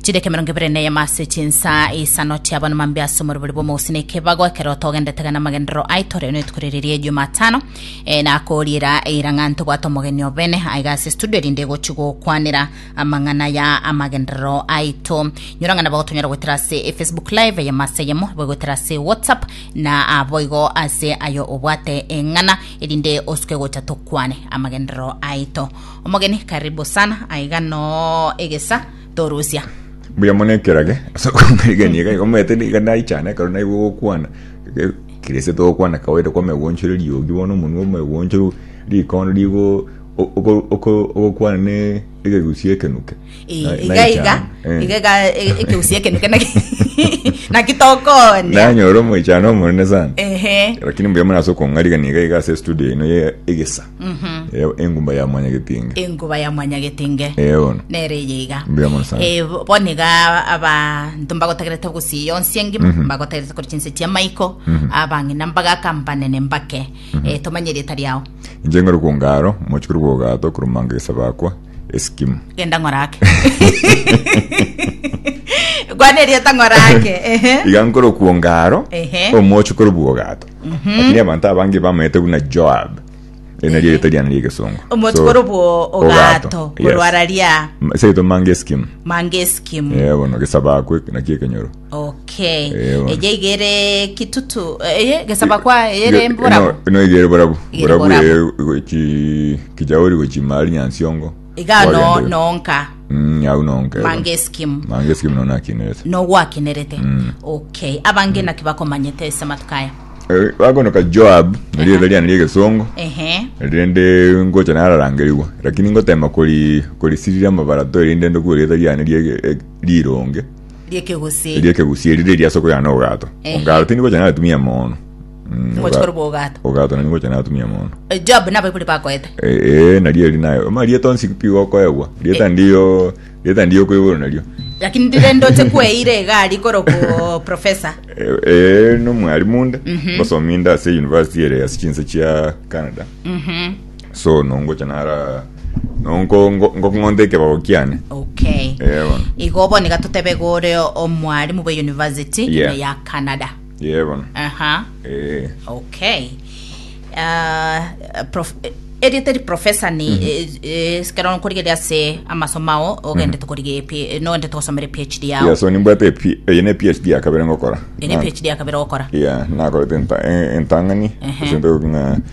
chideka emerongo ebere neyemo ase chinsa isano chiabana mambia ase omorobori bw'omogusii na ekebago ekero togendete gana amagenderero aito rero netuko riri ria ejumatano eh, nakoriera eira ng'a ntobwate omogeni obene aiga ase studio erinde egochi gokwanera amang'ana ya amagenderero aito nyora ng'a nabo tonyara goetera ase efacebook live eyemo ase eyemo abo goetera ase whatsapp na aboigo ase ayo obwate eng'ana erinde osuke gocha tokwane amagenderero aito Omogeni karibu sana aiga noo egesa torusia. Mbuya mono ekerage ase okomegania iga iga omanyete niga naichana ekero naigwa ogokwana Ge- kirese togokwana kawaida kwa omegoncho ere riogi bono omonwe omegoncho rikondo rigo o- oko- oko- ogokwana ne egegusii ekenuke Eh, Na- iga naye iga chana, eh. iga iga e- ekeusi ekenuke naki naki tokonia nanyora omoichano omonene sana ehe lakini mbuya muna ase okong'ariga niga iga ase studio ino ye egesa Eh, engumba ya mwanya getinge enguba ya mwanyagetinge Eh, bono nere eye iga mbuya mono sana Eh, bo- bono iga abanto mbagotagerete gusii yonsi engima mbagotagerete kore chinse chia maiko abang'ina mbagaka mbanene mbake Eh, tomanye rieta riao inche ng'ore kwongaro mochikuru bwogato kurumanga egesabakwa eskimu genda ng'orake kwana erieta ng'orake ehe iga nkoro kuonga aro Ehe. omochi kore bwogato lakini abanto abange bamaete buna joab eri nario erieta riane riegesongo omochi kore obwo ogato korwara ria seito mange eskimu mangeskimu yebono gesaba akwe naki ekenyoro Okay. Eh, bono. Eye igere kitutu eye gesaba kwa ere mborabo. no igere borabu Igere borabu borabu. eye gochi kijaori gochi mari nyansiongo Iga no Kwagenda- nonka Mm, au nonka eh, mange bono. skim. mange skim nona akinirete No gwakenerete. Okay. Abange naki bakomanyete ase amatuko aya. Eh, bakonoka joab nari eberia nari egesongo Ehe. rende ngocha nararangerigwa lakini ngotema kori korisirira amabarato erinde ndokure rieta riane rie- eh, rironge riekegusii. riekegusii eri riri ase okoyana obogato Ehe. ongaaro tindi gocha natumia mono Mm, Ngochi oga- kore bwogato. ogato nani gocha natumia mono Eh, Job nabaibuli bakoete. Eh, eh, nario eri nayo ma rieta onsi pi gokoegwa rieta Eh. ndiyo rieta ndiyo kwa igoro nario Lakini ndire ndoche kweire egari koro ko professor. Eh, eh, nomwarimu nde ngosomi nde ase university ere ase chinse chia canada Mhm. so nongocha nara nonko ngo- ngokong'onta ekebao kiane okay Eh, bono. igo bono iga totebe gore omwarimu bwa university Yeah. ya canada ye bono aha Eh, okay Ah, prof- eh, erio teri professor ni eh, eh, sikero nkorigeria ase amasomo ao ogende tokorige P- nogende togosomere phd yao yeah, so nimbwate epi- eye ne phd ya kabere ngokora ene Na- phd yakabere gokora yeah nakorete enta- eh, entang'ani Ehe. ase ntoki ng'a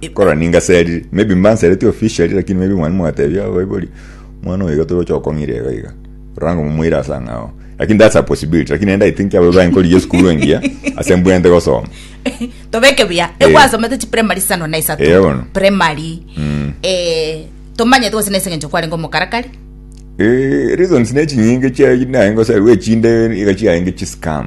Ekora ningaserire, maybe mbansereti officially lakini maybe mwane mwatebia abaibori mwana oyo iga toroche okong'ira iga iga. Rora ngomomoire ase ang'e ao. Lakini that's a possibility. Lakini naende I think abo ibaye nkorigia esukuru engiya ase mbwenerete gosoma. tobeke buya Eh. egwasomete chiprimary sano na isato Eh, bono. primary Mm. eh, tomanyete gose nase eng'encho kwarenge omokarakari Eh, reasons ne chinyinge chia naye ngoserwa echinde iga chiaye nge chiscam.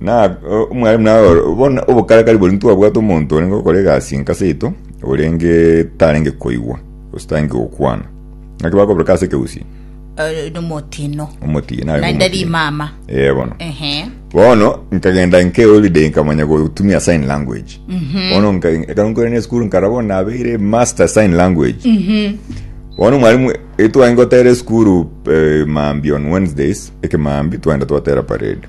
Na eh, omwalimu naye oro- bono obokarakari bori ntwabwate omonto orenge gokora egasi enka seito orenge tarenge koigwa gose tarenge gokwana naki bakoboreka ase ekegusii Eh, nomotino omotiye narenge naende omotiye. rimama Eh, bono ehe bono nkagenda nke holiday nkamanya gotumia sign language bono nka- ekero nkore ne school nkara bono nabeire master sign language bono mwalimu etwagenda gotera esukuru eh, maambi on wednesdays ekemaambi twagenda twatera parade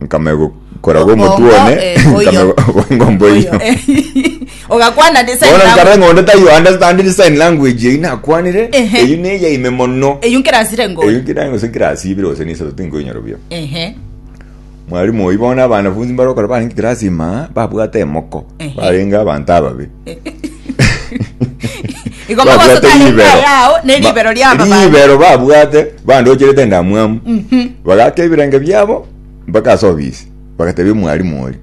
nkamegokora Obongo, g'omotwe one eh, oyo. nkamebonga omboiyo Oyo, eh. ogakwana design bono langu. nkarora ng'a onde tai understandiri sign language eyio nakwanire Ehe. eyio neyaime mono eyio nkerasire ngo eyio nkirange gose nkirasibire gose nisabe tinkoinyora buya Ehe. mwalimu oyio bono abanafunsi mbarokora barenge kirasi maa babwate emoko Ehe. barenge abanto ababe Igo magoso Babwate tarenge ribero. ayao, ne Ba- ribero ria ababani. ribero babwate bandocherete endamwamu bagaka ebirenge biabo mpaka ase obisi bagatebia omwarimu oria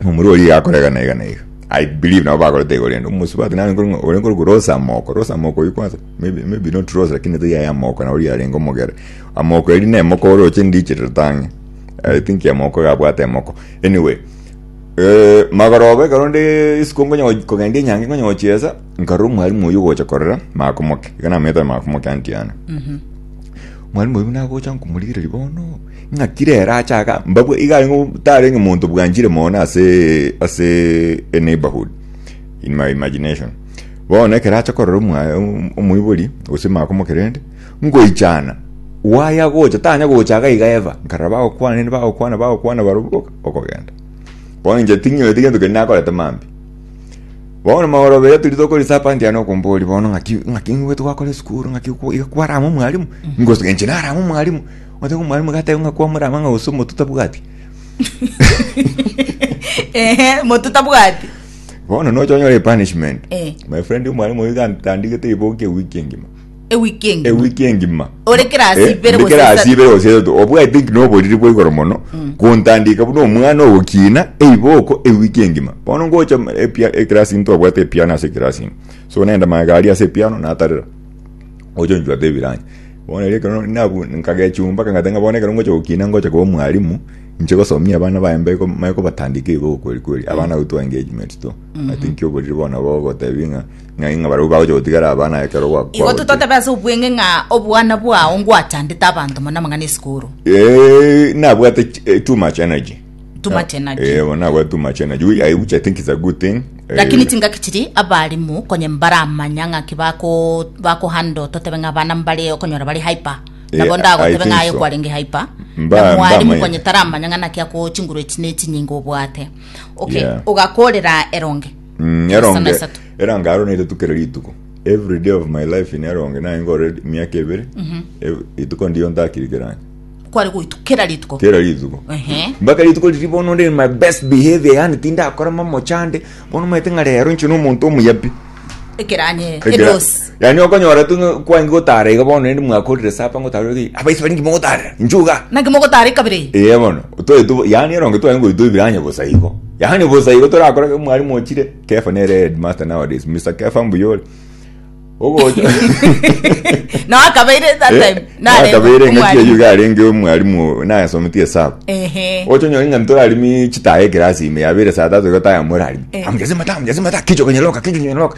omura oria iga akora iga na iga na iga i believe nabo bakorete igoro ende omosubati nare nkore ng'a ore nkore korosa amoko rosa amoko oyio kwanza maybe maybe not rosa lakini tiga yaye amoko naro yarenge omogere amoko eria na emoko oroche ndiche ritange i think amoko iga abwate emoko anyway Eh, magoroba ekero nde isiko nkonya go- kogenda enyangi nkonya gochiesa nkarora omwalimu oyo ogocha korera makomoke iga namaete makomoke anti ane mwalimu oyo buna agocha nkomorigereria bono ng'a kire ere achaga mbabwe iga arenge tarenge omonto bwanchire mono ase ase a neighborhood in my imagination bono ekero acha korora omwa- om- omoibori gose makomoke rende ngoichana waye agocha tanya gocha iga iga ever nkarora bagokwana rende bagokwana bagokwana baroboka okogenda. Bono inche ting'ioreti gento keria nakorete mambia. Bono magoro abere tiri tokori sapa ndiana okombori bono ng'aki ng'aki ng'igwete gwakora esukuru ng'aki okwo- iga kwarama omwarimu ngosuka inche narama omwarimu oteba omwarimu gateba ng'a kwamorama ng'a gose omotu tabwati Ehe, moto tabwati. bono nocha onyore epunishment Eh. my friend omwarimu oyo gantandigete riboki ewiki engima ewiki engima ewiki engima Ore kera ase Eh, ibere ndi gose kera ase isato. ibere gose isato obwate ngina oboriri bwa igoro mono gontandika buna omwana ogokina eiboko ewiki engima bono ngocha epia- ekerasi into abwate epiano ase ekerasi ime so nende magega aria ase epiano natarera ocha onchwata ebirancha bono erio ekero nabu- nkagechumba kang'ata ng'a bono ekero ngocha gokina ngocha koba omwarimu inche gosomia abana baye mbe ko- manye kobatandika eiboko eria kweri kweri abana gotoa engagement to ati nki oboriri bono nabo ogotebi ng'a Ng'ai ng'a barabwo bagocha gotigara abana aye ekero ogwakwa Igo gochire? totebe ase obwenge ng'a obwana bwao ngwachandete abanto mono amang'ana esukuru. Eh, nabwate ch- eh, too much energy Too much energy. Eh, bo nabwate too much energy Ui- I- which i think is a good thing Eh, Lakini chingaki chiri abarimu konye mbaramanya ng'aki bako bako handle totebe ng'a abana mbare okonyora bari hyper. Eh, Nabo I ndagotebe think ng'a aye so. kwarenge hyper. Mba- Na mwarimu mbamanya. konye taramanya ng'a naki ako chinguru echi ne chinyinga obwate. Okay, Yeah. ogakorera eronge. Mm, Esa eronge na isato. erange aro naitatu kera rituko every day of my life in eronge naye ngore miaka ebere ev- rituko ndiyo ntakirikeranye kware goitu kera rituko kera rituko Ehe. mpaka rituko riri bono ndi in my best behavior yani tindakora mamochande bono maete ng'a rero nche nomonto omuyapi ekeranye Ekera- edosi Yaani okonyora tu ng'a kwange gotara iga bono rende mwakorire sapa ngotara iga iga, abaisabari inki mogotarera? Nchuga! Naki mogotara ekabere eye? Ee bono, twae tu yaani eronge twae ngochi toibiranye bosa igo. Yaani bosa igo torakora ke mwalimu ochire, Kefa nere headmaster nowadays, Mister Kefa mbuya ore. Ogocha. Nao akabeire that time. narengwa Nakabeire engaki omwalimu. eyio iga arenge omwalimu nayasometie esabu. Ehe. Ocha onyore ng'a ntorarimi chitaha ekirasi ime yabere saa tatu iga tayamorarimi. Eh. Amujase mata amujase mata kichwa konyoroka kichwa konyoroka.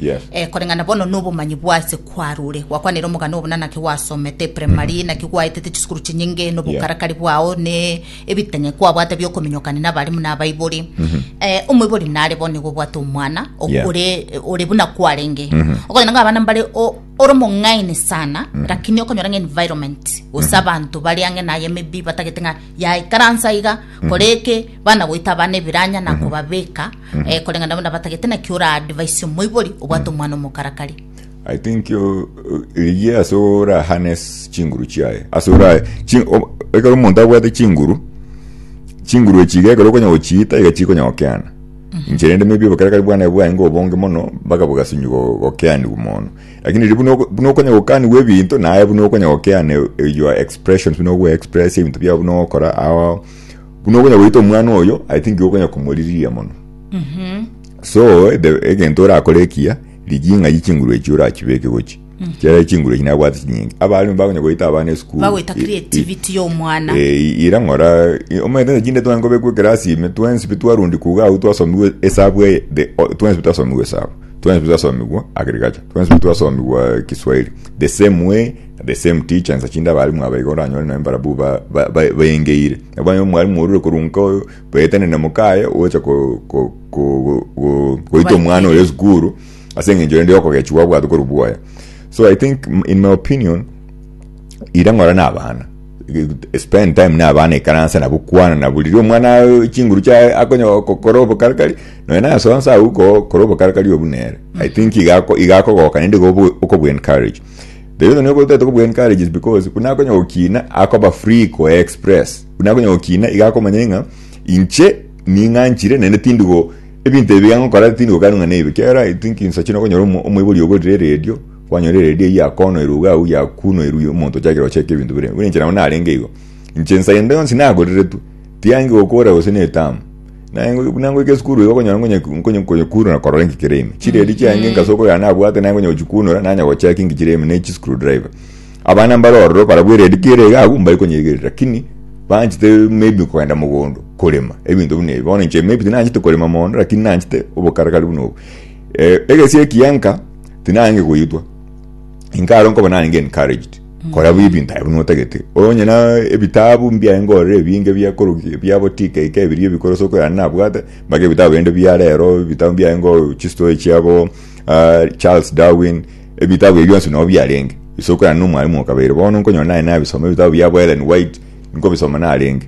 Yes. Eh, koreng'ana bono nobomanyi bwase kwarure gwakwanire omogano obo na naki gwasomete primary naki gwaetete chisukuru chinyinge nobokarakari bwao ne ebitanye kwabwate biokominyokana n'abarimu n'abaibori eh, omoibori nare bono nigo obwate omwana o- Yeah. ore ore buna kwarenge okonyora ng'a abana mbare o- ore omong'aini sana lakini okonyora ng'a environment gose abanto bari ang'e naye maybe batagete ng'a yaikaransa iga koreke bana goita abana ebiranya nakobabeka Eh, koreng'a nabo nabatagete naki ora advice omoibori obwate omwana omokarakari. I think uh, rigie ase ora harness chinguru chiaye ase ora chi, o- ekero omonto abwate chinguru chinguru echi iga ekero okonya gochiita iga chikonya gokeana inche rende maybe obokarakari bwane bwaye ngo obonge mono mpaka bogasinyi go- gokeanigwa mono lakini riria buna oko- buna okonya gokanigwa ebinto naye buna okonya gokeana your expressions buna ogoexpress ebinto biao buna ogokora ao Buna okonya goita omwana oyo, I think igo okonya komoririria mono. So, the- egento orakore ekiya, rigia ing'ayi chinguru echio orachibeke gochi. Ekiagera chinguru echi nabwate chinyinge. Abare nigo bakonya goita abana esukuru. bagoita I- i- creativity y'omwana Eh, ira ng'ora i- omanyete chinde twanye kobekwa ekerasi ime twensi pi twarundi kuga agwo twasomiwe esabu eye the- o- twensi pi twasomiwe esabu twensi pi twasomigwa agriculture twensi pi twasomigwa kiswahili the same way The same teacher nsa chinde abalimu aba iga oranyore nonye mbarabu ba- ba- ba- bayengeire nabo banyore omwalimu orure korwa nka oyo baetane na mokaye ogocha ko- ko- ko- go- go- goita omwana oyo esukuru ase eng'encho rende yokogechigwa gwabwate korwa bwoye so i think m- in my opinion ira ng'ora na abana spend time na abana ikaransa nabo kwana nabo riria omwana a- chinguru chiaye akonya gokora obokarakari nonye naye soa nsa agwo ko- kora obokarakari obwo nere i think igako- igakogoka naende iga obo- okobu encourage The reason nyoka otete kobua encourage is because buna akonya gokina akoba free ko express buna akonya gokina iga akomanya ng'a inche ning'anchire naende tindi go ebinto ebi ngokora tindi gokana ng'a nebi kera i think insa chino okonyora omo- omoibori ogorire radio kwanyora radio eye yakonoirwe iga agwo yakunoirwe omonto ochakire gocheka ebinto bire buna inche nabo narenge igo inche ensa ende yonsi nagorire tu tiangi gokora gose na etamu Naye ngo- buna ngoika esukuru iga okonyora ngonye- ngonye- nkonyekunora korora enki kere ime chiredi chiange ngase okoyora nabwate naye ngonye gochikunora nanya gocheka enki chire ime na echi screw driver abana mbare ororo barabwo eredi ki ere iga abwo mbari konyeigerera lakini banchete maybe kogenda mogondo korema ebinto buna ebi bono inche maybe tinanchete korema mogondo lakini nanchete obokarakari buna obo Eh, egesi ekiya nka tinange goitwa inkaro nkoba narenge encouraged Kora buya ebinto ebio notagete. Onye na ebitabu mbiaye ngorere ebinge biakoroki biabo tikaika ebiria ebikoro soko yane nabwate, mage ebitabu bende bia rero, ebitabu mbiaye ngo chistory chiabo ah, Charles Darwin, ebitabu ebio bionsi no biarenge. Isoko yane no mwalimu okabeire. Bono nkonyora naye nabisoma ebitabu biabo Ellen White, nkobisoma narenge.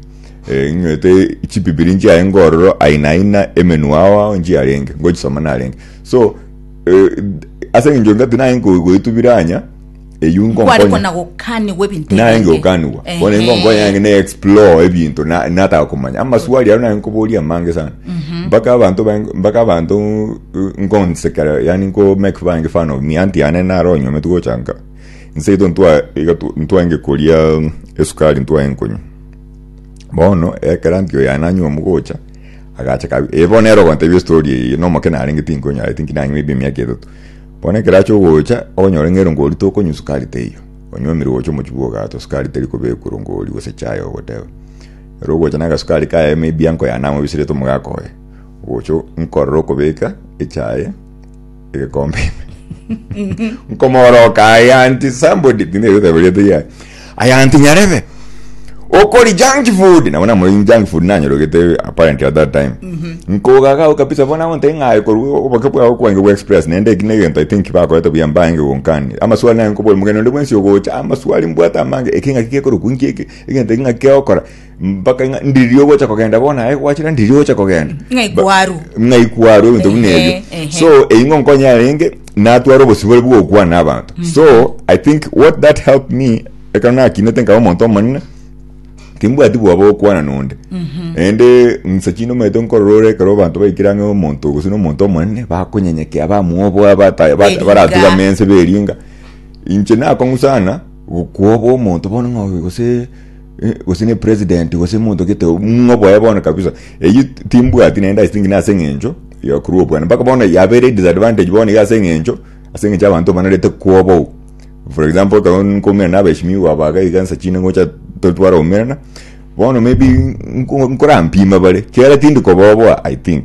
Eh, ng'ete chibibiri nchiaye ngororo aina aina emenwa ao ao nchiarenge, ngochisoma narenge. So, eh, ase eng'encho ngati naye nko- goetubira anya, eyio kware nkonkonya kona gokanigwa ebinto naye ebinge. ngokanigwa Ehe. bono nkonkonya yange ne explore ebinto na- nataka komanya amaswali aro naye nkoboria amange sana mpaka abanto bae- mpaka abanto uh, nkonsekera yani nko make fun yange fun of me anti yane naro onyomete gocha nka nseto ntwa iga tu- ntwange koria um, esukari ntwae nkonywa bono ekero anti oyo yananywa omogocha agacha kabi eh, bono ero ogotebia estori eye nomokina arenge tinkonyara tinki nanywa ebia emiaka etato Bono ekero ache ogocha, okonyora ng'a erongo rito okonywa sukari teiyo, onywomire gocha omochie bw'ogato, sukari teri kobekwa erongo oria gose chai, ogoteba, Ere ogocha nagasukari kaye maybe anko yane ang'we bisirete omogaka oye. Ogocha nkorora okobeka echaye egekombe ime. Nkomoroka aye anti somebody, tinde egoteba eria teri aye. Aya anti nyarebe. Okori junk food. Nabo namoregi junk food nanyorogete apparently at that time. Nkogagao kabisa bona onte ng'aye korwa oboke bwao kwange bwa express nende eki negento I think bakorete buya mbaenge gonkani. Amaswali nari nkobori mokenya onde bwensi ogocha amaswali mbwate amange eki ng'aki gekorokwa nki eki egento eki ng'aki kegokora. mpaka ng'a ndiri ogocha kogenda bono aye gwachira ndiri ogocha kogenda Ng'ai Ba- kwarwa. ng'ai kwarwa ebinto buna Ehe, ebio ehe. so eyi ngonkonya arenge natwara obosibore bw'ogokwana abanto so i think what that helped me ekero nakinete nkaba omonto omonene timbwati bwoba gokwana nonde naende ng'sa chinde omanyete nkorora ore ekero abanto baikire ang'e omonto gose nomonto omonene bakonyenyekea bamwoboa bata- ba- Beringa. baratugame ense beringa inche nakong'u sana gokwoboa omonto bono ng'a oyo gose Eh, gose ne president gose monto gete ng'o boye bono kabisa eyi timbwati naende i think na ase eng'encho yokorwa obwana mpaka bono yabere disadvantage bono iga ase eng'encho ase eng'encho abanto banarete kwobou for example ekero nkomera na abeshimiwa aba iga iga nsachi inde ngocha to- tware omerana bono maybe nko- nkorampima bare kiagera tindi koboboa i think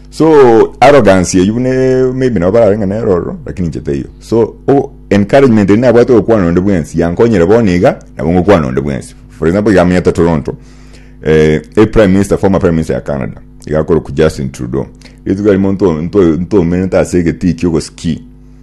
So arrogance eyio buna e- maybe nabo bararenge neroro lakini inche taiyo. So o- encouragement eri nabwate ogokwana onde bwensi yankonyire bono iga nabo ngokwana onde bwensi. For example iga amenyete Toronto eh, e prime minister former prime minister ya Canada iga akorokwa Justin Trudeau. Rituko riria monto nto- ntomenete ase egetii ki'ogosiki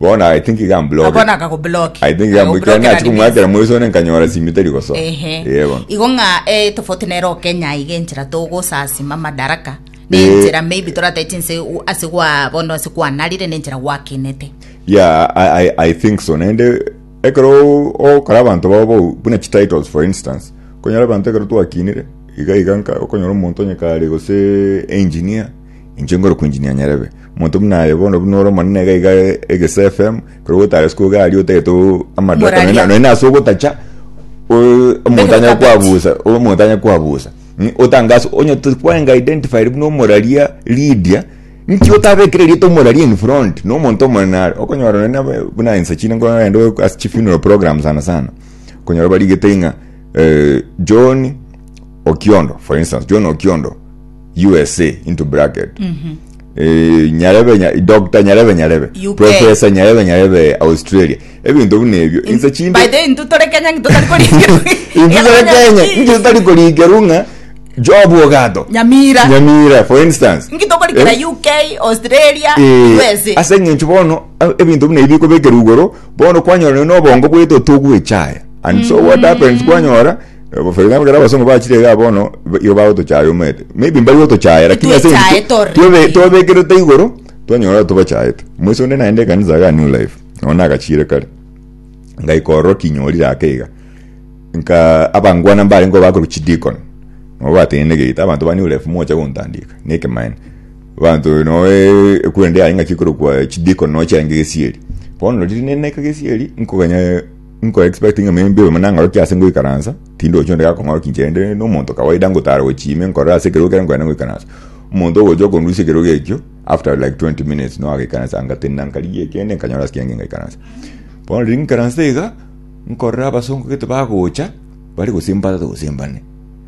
Bono I think ga mbloke. bono akagobloki I think ga mbloke. Kera nachi komwakera moisone nkanyora simi teri gosoa. Ehe. Ee bono. igo ng'a eh, tofauti nero okenya iga enchera togosasima madaraka na Eh. enchera maybe toratete inse u- ase gwa bono ase kwanarire na enchera gwakinete Yeah, I, I, I think so. Nende ekero o- okora abanto babo bau- buna chi titles for instance. Konyora abanto ekero twakinire. Iga iga nka okonyora omonto onye kare gose engineer. Inche nkore kwinjinia nyarebe. Omonto buna aye bono buna ore omonene iga iga egese FM, ekero gotara isiko iga aria otagete o- amadwata nonya Moraria. nonya ase ogotacha o- omonto anyare Ndekogabeti. kwabusa omonto anyare kwabusa Mm, otange ase onye to- kwarenge identified buna omoraria Lydia nki otabekire erieta omoraria in front na omonto omonene are okonyora nonya na ba- buna insa chinde nkorora ende o- ase chifuneral program sana sana okonyora barigete ng'a eh, John Okiondo for instance John Okiondo usa into bracket Eh, nyarebe nya- doctor nyarebe nyarebe UK. professor nyarebe nyarebe australia ebinto buna ebio inse chinde By the way, ntu tore Kenya ngitu tari korikirwa. inse tore kenya inche tari korikerwa ng'a job ogato Nyamira. nyamira for instance Ngitu okorikira Eh, UK, Australia, eh, USA. ase eng'encho bono eh, ebinto buna ebio bikobekerwa igoro bono kwanyora nonya na obongo bwaito togwechaya and so what happens kwanyora Obofairi abagera abasongo bachire igaa bono ba- igo bagotochaya omanyete maybe mbari gotochaya lakini ase eng'encho Titwechaete tu- already. twabe- twabekerete igoro twanyora tobachaete omoisa onde naende ekanisa igaa new life nonye nagachiire kare ngaika ororo kinyorire ake iga nka abangwana mbarengeo bakorwa chideacon nabo bateine egeita abanto ba new life mocha gontandika na ekemaene abanto noe ekura ende yaye ngaki korokwa chideacon nochiaye nka egesieri bono riria nere naika gesieri nkoganya Nko expect ng'a may be nang'orokie ase ngoikaransa, tindochi onde gakong'oroki inche rende nomonto kawaida ngotara gochia ime nkorore ase ekerogo ekero nkoenda ngoikaransa. Omonto ogocha okondusia ekerogo ekio after like twenty minutes noo agaikaransa anga tenena nkarigia ekiagera nkanyora ase kiagera ngaikaransa. Bono riria ngaikaransa iga nkorora abasongo gete bagocha bare gose mbatatogose mbane.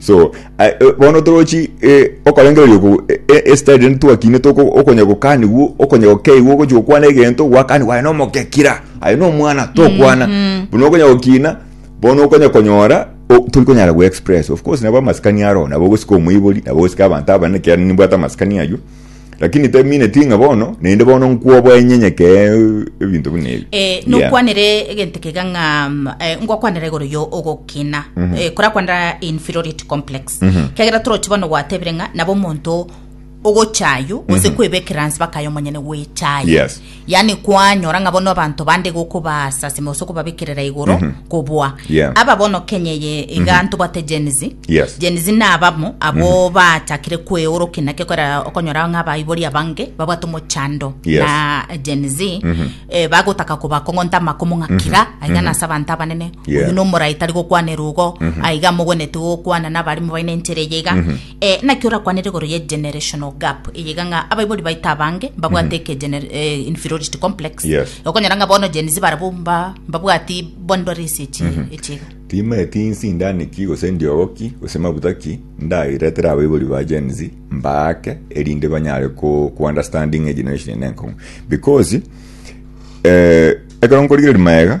so a- e- bono torochi eh, okorengereria oku e- e- estadi rende twakine toko okonya gokanigwa okonya gokeigwa ogochi gokwana egento gwakanigwa aye nomogekira aye nomwana tokwana buna okonya gokina bono okonya konyora o- tori konyara go express of course nabo amasikani aro nabo ogosika omoibori nabo ogosika abanto abanene ekiagera nimbwate amasikani aywo lakini temineti ng'a bono naende bono nkwoboa enyenyeke ebinto buna ebi Eh, Yeah. nokwanere egento kega ng'a mm, eh, ngwakwanera igoro yo ogokina Eh, korakwanera inferiority complex kegera toroche bono gwatebire ng'a nabo omonto ogochayo gose kwebekera nse bakayo omonyene gwechayo Yes. yaani kwanyora ng'a bono abanto bande igo okobaasa ase ase okobabekerera igoro kobua Yeah. aba bono kenya eye iga ntobwate Gen Z Yes. Gen Z nabamo abo bachakire kweorokia naki okora okonyora ng'a abaibori abange babwate omochando Yes. na Gen Z eh, bagotaka kobakong'onta amakomo ng'a kira aiga nase abanto abanene Yeah. oyu nomorai tari gokwana erugo aiga mogwenetie gokwana nabarimo baine enchera eye iga Ee, naki orakwanere igoro ye generational gap eyeiga ng'a abaibori baito abange mbabwate eke gener- eh, inferiority complex Yes. okonyora ng'a bono Gen Z barabwo mba- mbabwati bondore ase echi echiga timaeti insindani ki gose ndiogo ki gose maguta ki ndairetere abaibori ba Gen Z mbaake erinde banyare ku, ku understand ng'a generation ene enkong'u because eh, ekero nkorigereria maega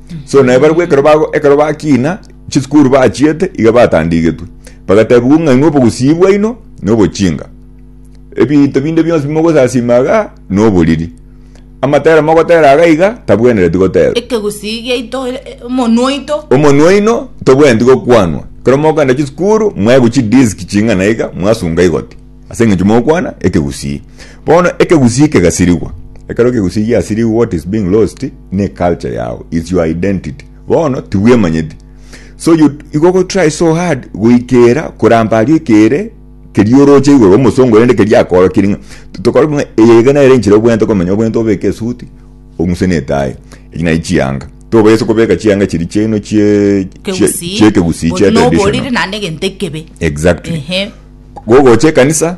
So na ebarabwo ekero bago ekero bakina chisukuru bachiete iga batandigetwe. Bagatebiwa ng'a inwe obogusii bwaino nobochinga. Ebinto binde bionsi bimogosasima iga noboriri. Amatera mogotera iga iga tabwenereti goterwa. Ekegusii giaito e- e- omonwa oito. Omonwa oino tobwenereti gokwanwa. Ekero mogokenda chisukuru mwaigwa chidisk ching'ana iga mwasunga igoti. Ase engencho mogokwana ekegusii. Bono ekegusii kegasirigwa. Ekero ekegusii giasirigwe what is being lost ne culture yao is your identity. Bono tibwemanyeti so you igo go try so hard goikera koramba aria oikere keria oroche igoro omosongo rende keria akoorokirie ng'a tokore buna eye iga nere enchera obwenerete komenya obwenerete obeke esuti ong'use ne etayi echi naye chianga tobaisa ase kobeka chianga chiria chiaino chie chie Kegusii, chie chie bori na ekegusii bori traditional. rinde naende egento ekebe. Exactly. Ehe. gogocha ekanisa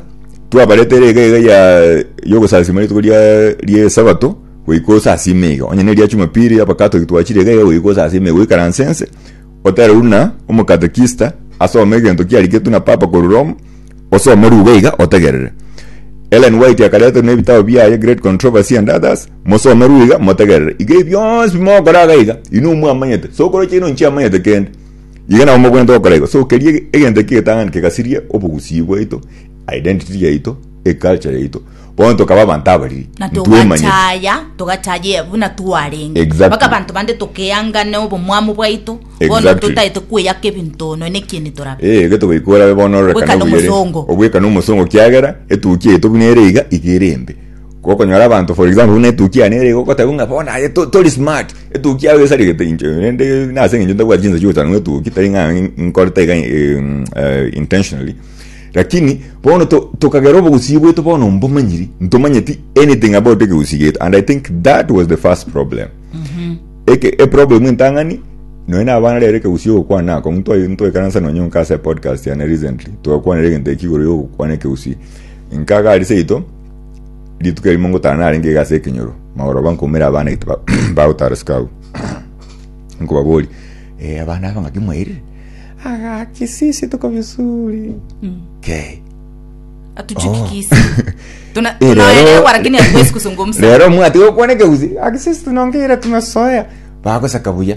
twabarete erega iga ya yogosasima rituko ria ria esabato goika osasime iga onye neria chumapiri abakatoki twachire iga iga goika osasime iga oikaranse ense otere buna omokatekista asome egento kiariketwe na papa korwa roma osome ruga iga otegerere Ellen White akarete na ebitabo biaye Great Controversy and Others mosome ruga iga motegerere iga ebi bionsi bimogokora iga iga inwe mwamanyete sokoroche ino nchiamanyete kende Iga nabo mogwenerete gokora igo. So keria egento ekio egetang'ani kegasiria obogusii bwaito, identity yaito, eculture yaito. Bono tokaba abanto abariri. na Ntwemanyeti. togachaya togachayia buna twarenge Exactly. mpaka abanto bande tokeangane obomwamu bwaito bono Exactly. totaete kweyaka ebinto nonya nekieni torabe Eh, gete goika orabe bono ororekane Obwekane obuya rende. omosongo. Obwekane omosongo kiagera etukia yaito buna ere iga, iga ere embe. Gokonyora abanto for example buna etukia yane ere igogotebia ng'a bono aye to- tori smart etukia yao esarigete inche rende nase eng'encho ntabwati chinsa chia gochora ng'a etukia tari ng'a nkorete iga eh, mm, eh, intentionally lakini bono to- tokagera obogusii bwaito bono mbomanyiri ntomanyeti anything about ekegusii giaito and i think that was the first problem eke eproblem entang'ani nonya na abana rero ekegusii ogokwana akong'u ntwa- ntwaikaransa nonya nka ase podcast yane recently twakwanire egento ekio igoro ya ogokwana ekegusii nkagari seito rituko erimo ngotara narenge iga ase ekenyoro, magoro ba nkoumera abana aito ba- bagotara isiko agwo. Nkobaboria, eh, abana aba ng'aki mwairire? Aga, kisisi tuko vizuri. Okay. atuchukikisi Tuna- Eh, lero- tunaelewa lakini hatuwezi kuzungumza lero mwati gokwana ekegusiri akisisi tunongeira tumesoea bagosaka buya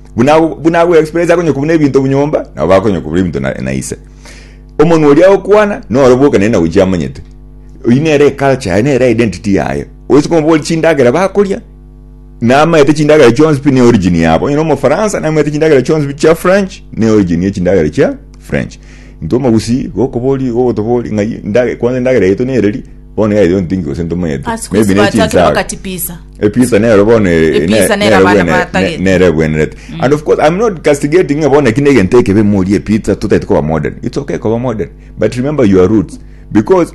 Buna buna ago experience akonyoka buna ebinto obunyomba, nabo bakonyoka buna ebinto na, na ise. Omonwa oria agokwana, noro boka nere nagochia amanyete. Oyi nere eculture yaye, nere identity yaye. Oise komobori chindagera bakoria, namanyete chindagera chionsi pi ne origin yabo. Onye nomofaransa, namanyete chindagera chionsi pi chia French, ne origin ye chindagera chia French. Intwe omogusii, gokobori, gogotobori, ng'ai, ndage, kwanza endagera yaito nereri, bono yaito ntingi gose ntomanyete. Asukusi Maybe ne bachakire chinsaga. bakachipisa. Episa nero bono ere- Episa ne- nero nero abana bwene- batagete. ne- nero ebwenerete and of course i'm not castigating ng'a bono eki negento ekebe morie epizza totaete koba modern it's okay koba modern but remember your roots because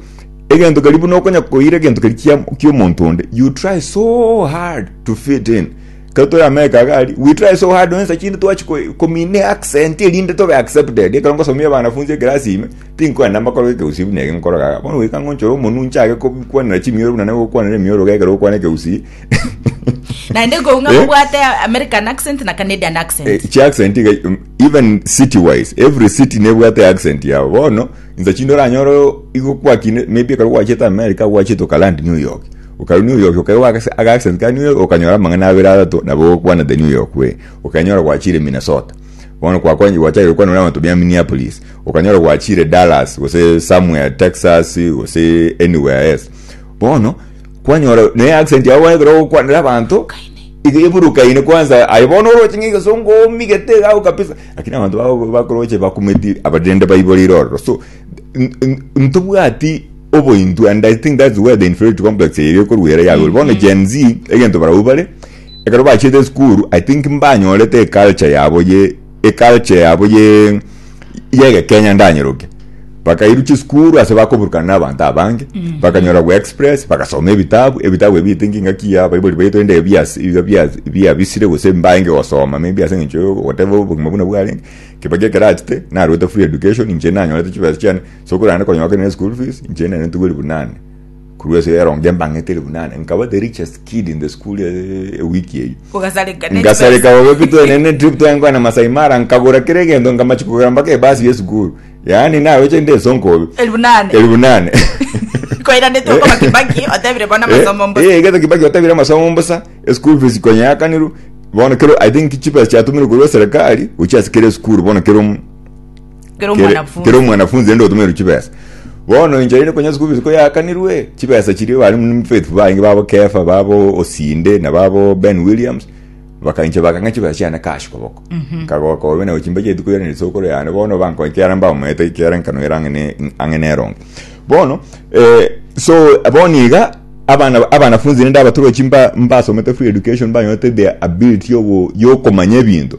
egento keri buna okonya koira egento keri kia kiomonto onde you try so hard to fit in ekero tore america iga aria we try so hard onye nsa chinde twachi ko- komina eaccent erinde tobe accepted ekero ngosomia abanafunzi ekerasi ime Tinkwenda mbakorere ekegusii buna eke nkoroga aka. Bono goika ngonchore omonwe nchake kobikwanera chimioro buna nagokwanera emioroga ekero okwana ekegusii. Naende kou ng'a Eh? mobwate American accent na Canadian accent. Eh, chi accent iga um, even city wise every city nebwate accent yabo bono insa chinde oranyore o- igo kwakine maybe ekero gwachete america gwachete okalandi new york okaru new york okaigwa aka- aga accent ka new york okanyora amang'ana abere atato nabo ogokwana the new york way okanyora gwachire minnesota bono kwakwani gwachagire gokwana buna abanto bia minneapolis Okanyora gwachiire Dallas gose somewhere Texas gose anywhere else. Bono kwanyora ne accent yao ekero ogokwanera abanto iga eburukaine kwanza aye bono oroche ng'a egesongo omigete iga abwo kabisa lakini abanto bago bakoroche bakumeti aba rende baiborire ororo so n- n- ntobwati obointo and I think that's where the inferiority complex eye ekorwa ere yagorwa. Bono Gen Z egento barabwo bare ekero bachiete esukuru I think mbanyorete eculture yabo ye eculture yabo ye yegekenya ndanyeroke bakairu chisukuru ase bakoburukana na abanto abange bakanyora bwa express bagasoma ebitabu ebitabu ebi etinki ngaki ya baibori baito ende ebias iga bias biabisire gose mbaenge gosoma maybe ase eng'encho yo whatever obogima buna bwarenge kebaki ekerachete narwete free education inche nanyorete chibesa chiane so korende konyoka kere ne school fees inche nere ntugwe ribu nane. Korwa ase rero inche mbang'etire buna ne, nkaba the richest kid in the school eh, ewiki eyio. Ogasareka ne ngasareka chibesa. bobe pito ene ne trip twaengwa na Masai Mara nkagora kera egento nkamachi kogera mpaka ebasi yesukuru yaani naweche nde esonko bobe Elfu nane. elfu nane Koiranete okoma Kibaki, otebire bono amasomo mbo. Eh, egento kibaki otebire amasomo mbosa eschool fees konya yakanirwe bono kero i think chipesa chiatumire korwa serikali gochia ase kera esukuru bono kero omo- Kero kere omwanafunzi. kere omwanafunzi ende otomerwe chibesa bono inche rinde konya school fees koyakanirwe chibesa chiria bari muna faithful baye inge babo kefa babo osinde na babo ben williams baka inche bakang'a chibesa chiane cash koboko nkagoka obe nabo chimbeche rituko riane risokoro yane bono bankonya ekiara mbamoete ekiara enkano ere ang'e ne- ang'e neronge bono eh, so bono iga abana abanafunzi rinde abatorwa chimba mbasomete free education mbanyorete the ability yogo yokomanya ebinto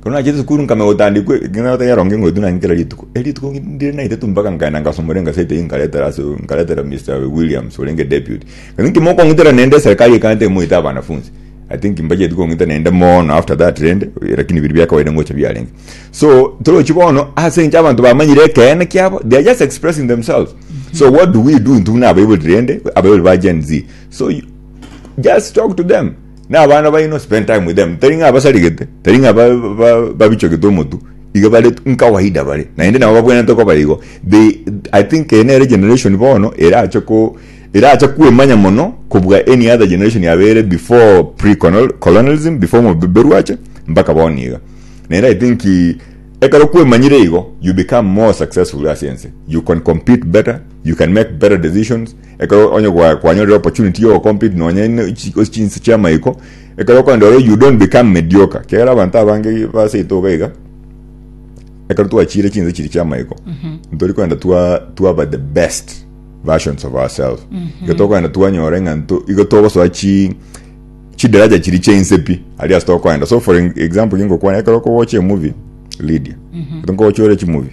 Ekero nachete sukuru nkamenya gotandikwa ekeng'ana gotari erongo eng'wetu nang'e kera rituko. Eri rituko ndire naitetu mpaka nkaenda ngasoma ore engaseti eyio nkaretera ase nkaretera Mister Williams orenge deputy. Ng'a inki mokong'itera naende eserikari ekanyete moite abanafunzi. I think mbacheti kong'ita naende mono after that rende lakini biria bia kawaida ngocha biarenge. So torochi bono ase eng'encho abanto bamanyire ekeene kiabo they are just expressing themselves. So what do we do intwe buna abaibori rende abaibori ba Gen Z. So you just talk to them. Na abana baino spend time with them tari ng'a basarigete tari ng'a ba- ba- babichogete omotu iga bare nkawaida bare naende nabo babwenerete koba igo they i think eye nere generation bono erache ko erache kwemanya mono kobua any other generation yabeire before pre colonialism before omobeberu ache mpaka bono iga naende i think ekero kwemanyire igo you become more successful ase ense you can compete better you can make better decisions Ekero onye gwa- kwanyorire opportunity yo compete nonye ne- chi- ase chinse chia maiko, ekero okogenda ororo you don't become mediocre. Kiagera abanto abange baseete iga iga, ekero twachiire chinse chiria chia maiko, ntori kogenda twa- twaba the best versions of ourselves. Igo tokogenda twanyora ng'a nto- igo togosoa chi chidaraja chiri chia inse pi aria ase tokogenda so for example kingokwana ekero okowocha emovie lydia ekero nkowocha ore chimovie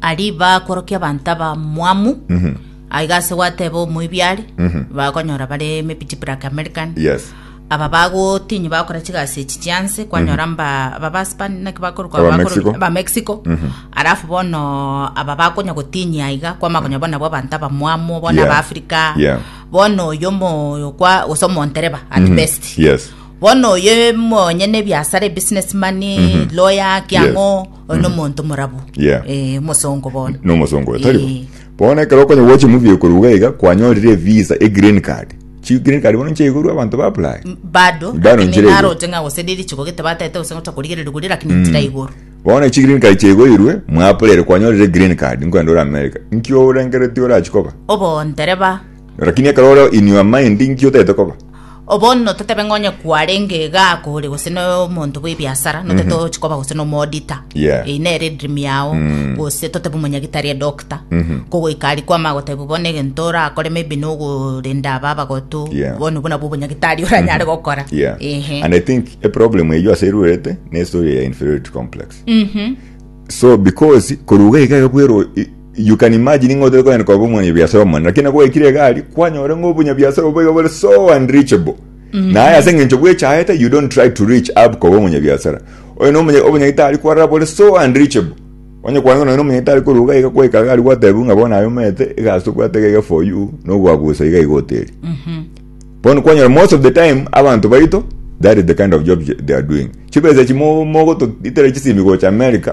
Aria bakorokia abanto abamwamu, aiga ase gwateba omoibi are, bakonyora bare mepiti black American. Yes. Aba bagotinyi bakora chigasi echi chianse, kwanyora mba aba ba Spain naki bakorokwa Aba bakoro- Mexico. aba Mexico. Alafu bono aba bakonya gotinyi aiga, kwama konya bono nabo abanto abamwamu, bono Yeah. aba Africa. Yeah. Bono oyo omo kwa gose omontereba at best. Yes. bono oyo monyene ebiasara ebusinessman lawyer kiang'o Oyo nomonto morabu. Yeah. Eh, omosongo bono. nomosongo oyo taribo Eh. bono ekero okonya gwacha emuthia igoro iga iga kwanyorire visa e green card chi green card bono nchaigorwa abanto ba apply Bado. Bado lakini nchire igoro. naroche ng'a gose riri chiko gete batete gose ngocha korigereria goria lakini ntira igoro. bono echi green card chaigoirwe mwaplaire kwanyorire green card nkwenda ore america nki ourengeretie orachi koba Obondereba. Lakini ekero ore inwe amaende, inki otaete koba? O bono totebe ng'a onye kwarenge egaako ore gose nomonto bw'ebiasara, notete ogochi koba gose n'omoodita. Yeah. Eyio nere edream yao, gose totebe omonyagitari, edoctor. Kogoika aria kwama agotebi bono egento orakore maybe nogorenda aba abagotu, Yeah. bono obwo nabwo obonyagitari oranyare gokora. Yeah. Ehe. And I think a problem eyio ase erwerete ne story ya inferiority complex. So because koruga iga iga bwero i- You can imagine ng'a otari konyara koba omonyabiasara omonene, lakini nabo gwaikire egari, kwanyora ng'a obonyabiasara obwo iga bore so unreachable. Naye ase eng'encho bwechaete, you don't try to reach up koba omonyabiasara. Oyo na omonya- obonyagetari kwarora bore so unreachable. Onye kwanza nonya na omonyagitari korwa iga iga kwaika egari gwatebiwa ng'a bono aye omanyete egasi tobwate iga iga for you, na ogoabusa iga iga oteri. Bono kwanyora most of the time abanto baito that is the kind of job they are doing. Chibesa echi mo- mogotoitera chisimi gocha America,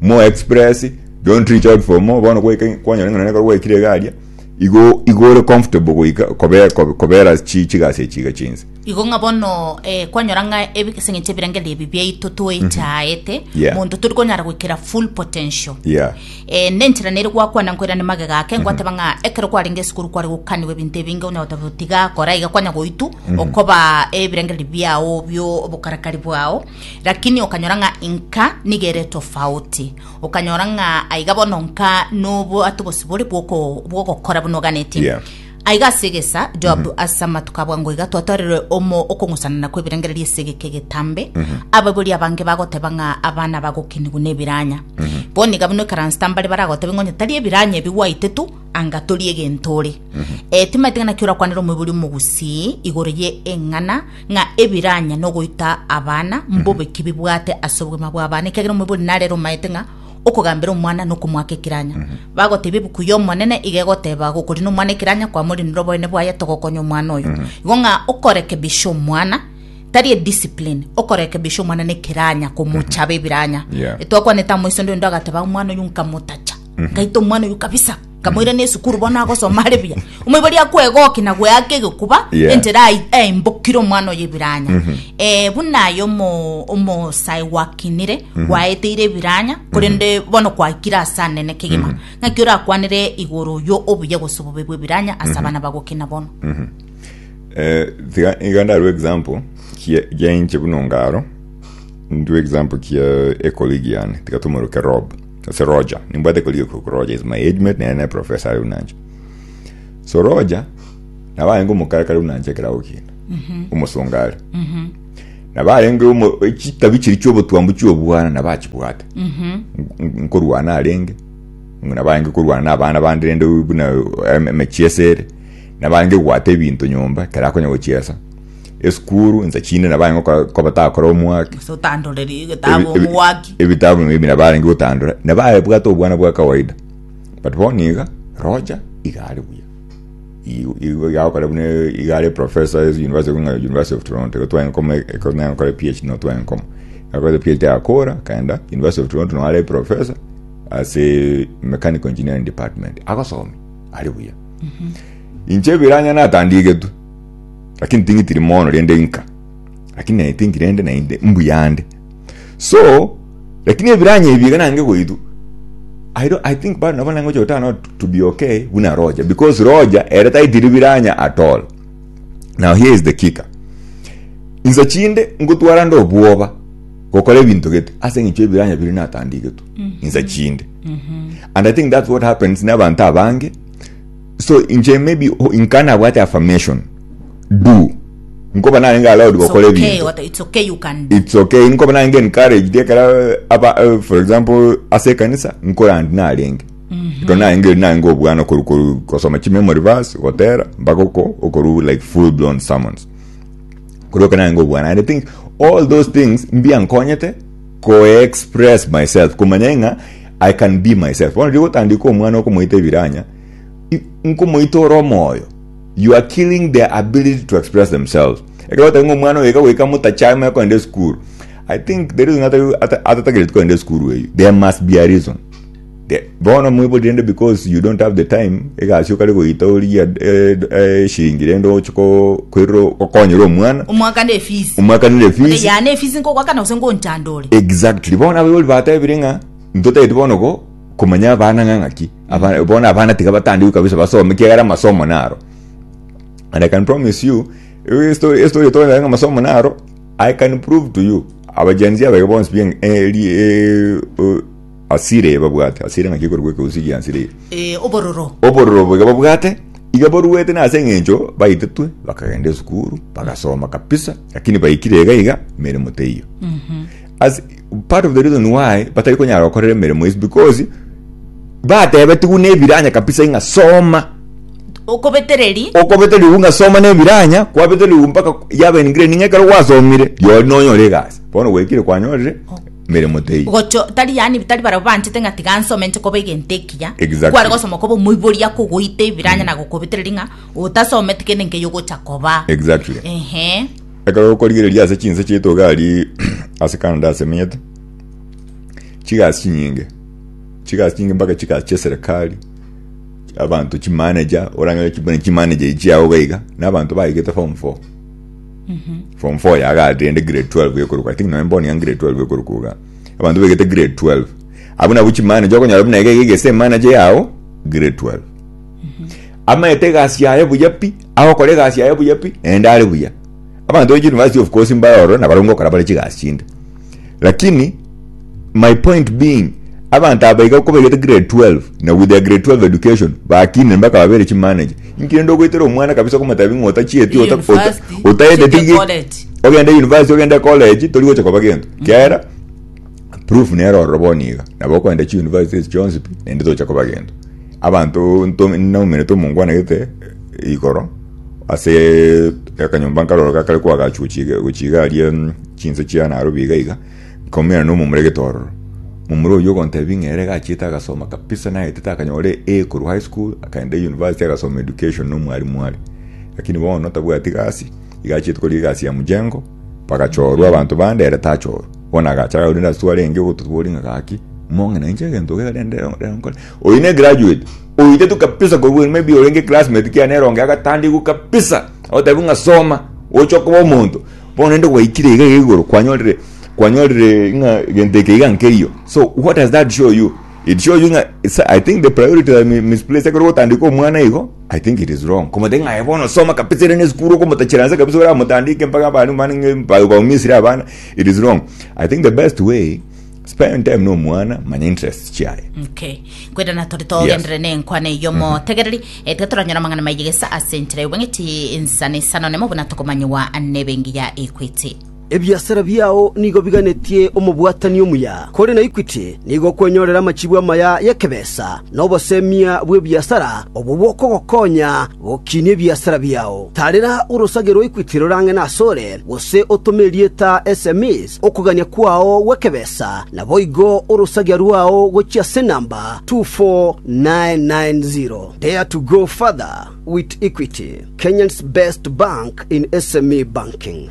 More express, don't reach out for more, bono goika kwanyora ng'a nonye ekero gwaikire iga aria, igo igo ore comfortable goika kobe- kobe- kobera chi- chigasi echi iga chinse. Igo ng'a bono eh, kwanyora ng'a ebi- ase eng'encho ebirengererio ebi biaito toechaete Yeah. monto tori konyara goikera full potential Yeah. Eh, nenchera nere gwakwana nkoirane magega ake ngwateba ng'a ekero kwarenge esukuru kware gokaniwa ebinto ebinge onya goteba tiga kora iga kwanya goitwa okoba ebirengererio biao bio obokarakari bwao Lakini okanyora ng'a inka nigo ere tofauti, okanyora ng'a aiga bono nka nobwate obosibore bw'oko- bw'ogokora buna oganeti. Yeah. Aiga ase egesa Joab ase amatuko abwo ango iga twatorire omo okong'usanana kw'ebirengererio ase egeka egetambe, abaibori abange bagoteba ng'a abana bagokinigwa nebiranya. Bono iga buna ekaransete mbare baragotebe ng'a onye tari ebiranya ebi gwaitetu, anga tori egento ore. Eh, timaeti ng'a naki orakwanera omoibori omogusii igoro ye eng'ana ng'a ebiranye nogoita abana mbobe ki bibwate ase obogima bw'abana, ekiagera omoibori narere omaete ng'a okogambera omwana nokomoaka ekiranya. Bagotebia ebuku y'Omonene iga egoteba, gokorina omwana ekiranya kwamorinire oboyene bwaye togokonya omwana oyo. Igo ng'a okorekebisha omwana tari ediscipline, okorekebisha omwana nekiranya komochaba ebiranya. Yeah. Twakwanete amo iso nde onde agateba omwana oyo nkamotacha, nkaita omwana oyo kabisa. Nkamoirana esukuru bono agosoma are buya. Omoibori akwegokia na gweaka egekuba Yeah. enchera ai- aimbokire omwana oye ebiranya. Eh, buna aye omo- omosae gwakinire gwaeteire ebiranya korende bono kwaikire ase anene kegima. Naki orakwanere igoro oyio obuya gose obobe bw'ebiranya ase abana bagokina bono. Eh, tiga iga ndarue example kia gia inche buna ongaro ndue example kia ecolleague yane tiga tomoroke rob Ase Roger, nimbwate koriokwa korwa Roger is my age mate, nere ne professor are unanche. So Roger, nabo arenge omokare kare unanche ekerago kiane, omosonga are. Nabo arenge omo- chitabi chiri chiobotwambu chiobwana nabo achibwate. Nk- Nkorwana arenge, nabo arenge korwana na abana bande rende buna em- emechiesa ere, nabo arenge goata ebinto nyomba, ekero akonya gochiesa. esukuru insa chinde nabo aye ngokora koba takora omwaki Ase otandorerie egetabu Ebi- ebi- omwaki ebitabu maybe nabo arenge gotandora nabo abwate obwana bwa kawaida but bono iga rocha iga are buya Igo- igo iga agokora buna iga are professor ase university ekong'a university of toronto igo twagenda koma ekong'a gokora phd no twagenda koma akoete phd agakora akaenda university of toronto nabo are professor ase mechanical engineering department agosomia are buya inche ebiranya natandigetwe lakini ting'itiri mono rende inka lakini naye tingi rende naende mbuya ande so lakini ebiranya ebi iga nange goitwa I, don't, I think bado nabo nange gocha gotana nao to be okay buna roja because roja ere taitiri biranya at all now here is the kicker insa chinde ngotwara nde obwoba gokora ebinto gete ase eng'encho ebiranya biri natandigetwe insa chinde and i think that's what happens n'abanto abange So inche maybe oh, inka nabwate affirmation do nkoba narenge allowed It's gokora okay, ebinto what- it's okay you can do. it's okay nkoba narenge encouraged ekera eh, aba eh, for example ase ekanisa nkorandi narenge ekero narenge narenge obwana okoru koru gosoma chimemory verse gotera mpaka oko okoru like full blown sermons kuroka nange obwana and i think all those things mbiankonyete koexpress myself kumanya ng'a i can be myself bono rigotandika omwana okomoita ebiranya nkomoitora omoyo you are killing their ability to express themselves ekero otari ng'a omwana oyo iga goika motachame kogenda esukuru i think the reason atari- ata- atatagereti kogenda esukuru eyio there must be a reason The- bono moibori rende because you don't have the time egasi okare goita origie eh, eh, eshiringi rende oche ko- koirora okonyera omwana omwakana efisi omwakanire Ode fees yana efisi nkogwakana gose ngonchanda ore exactly bono abaibori batebire ng'a ntotageti bono go Komanya abana ng'a ng'aki abana bono abana tiga batandikwe kabisa basome kiagera amasomo naro and i can promise you eh, story eh, story tore ng'a amasomo naro i can prove to you abajenzi abege bonsi bien eh, ri- eh, oh, asire babwate asire ng'aki ekorwa ekeusi gia asire Eh, obororo obororo boiga babwate iga boruete nase eng'encho baitetwe bakagenda esukuru bagasoma kabisa lakini baikire iga iga emeremo teiyo As- part of the reason why batari konyara gokorera emeremo is because batebetigwe nebiranya kabisa ing'a soma okobetereri okobeterigwe ng'a soma nebiranya kwabeterigwe mpaka yaba in grade ning'a ekero gwasomire riori nonyore egasi bono gwaikire kwanyorire emeremo teiyo gocho tari yani tari barabwo banchete ng'a tiga nsome nche koba egento ekiya Exactly. kware gosoma koba omoiboria kogoita ebiranya na gokobetereri ng'a otasometi kende nkeiyo ogocha koba exactly ehe Ekero okorigereria ase chinse chiaito gari ase Canada ase emenyete, chigasi chinyinge, chigasi chinyinge mpaka chigasi chia serikali, abanto chimanager, orang'e buna chimanager echi chiao iga iga, na abanto baigete form four. Form four yago ati rende grade 12 ekoruka, I think nonya mboni yanga grade 12 ekoruka iga. Abanto baigete grade 12. Abwo nabwo chimanager okonyora buna iga iga egese emanager yao grade 12. Amaete egasi yaye buya pi. Agokora egasi yaye buya pi, naende are buya. Abanto be University of Coast mbare ororo nabarungo gokora bare chigasi chinde. Lakini my point being abanto aba iga ko baigete grade 12 na with their grade 12 education bakinire mpaka babere chi manager. Inki rende ogoitera omwana kabisa okomotebi ng'a otachieti ota- ota- University, otaendeti ochete gi- college. ogende university ogende college tori gocha koba gento. Kiagera Proof nere ororo bono iga, nabo okogenda chi university echio chionsi pi, naende tocha koba gento. Abanto nto nomenete omongwanegete igoro ase akanyomba nkaroro gakare koagachu gochi gochi iga aria mm, chinse chia Nairobi iga iga, nkominana na omomura egete ororo. Momura oyio ogontebia ng'a ere gachiete agasoma kabisa naetete akanyora A A korwa high school akaenda university agasoma education na omwarimu are. Lakini bono tabwati gasi, iga achiete korigia egasi ya mjengo, Bagachoorwa abanto bande, ere tachoorwe. Bono agacha agakora rende asitwe arenge ogototwori ng'a gaki, mong'ina inche egento iga rende rero rero nkore. Oyio ne graduate, oitetwe kabisa korwa maybe orenge eclassmate kiaye nere onge agatandikwa kabisa, agotebiwa ng'a soma oche okoba omonto. Bono rende gwaikire iga iga igoro kwanyorire kwanyorire ng'a egento eke iga nkeiyo. So what does that show you? it shows you ng'a it's- i think the priority are mi- misplaced ekero gotandika omwana igo i think it is wrong komotaki ng'a aye bono soma kabisa ere nesukuru okomotachera nse kabisa oramotandike mpaka abana omwana ng'a ba- baumisire abana it is wrong i think the best way spend time nomwana manya interests chiaye Okay. kwenda na tore togendere nenkwana eyo motegereri etwe toranyora amang'ana maigegesa ase enchera y'obong'iti insana isano nemo buna tokomanyiwa nebe engiya ekwete Ebiasara biao nigo biganetie omobwatani omuya, kore na Equity nigo okwenyorera amachibu amaya y'ekebesa na obosemia bw'ebiasara obwo bokogokonya gokinia ebiasara biao. Tarera orosage rwa Equity rorang'e nasore, gose otome erieta sms okogania kwao gw'ekebesa, naboigo orosagia rwao gochia ase enamba 24990. Dare to go further with Equity, Kenyan's best bank in SME banking.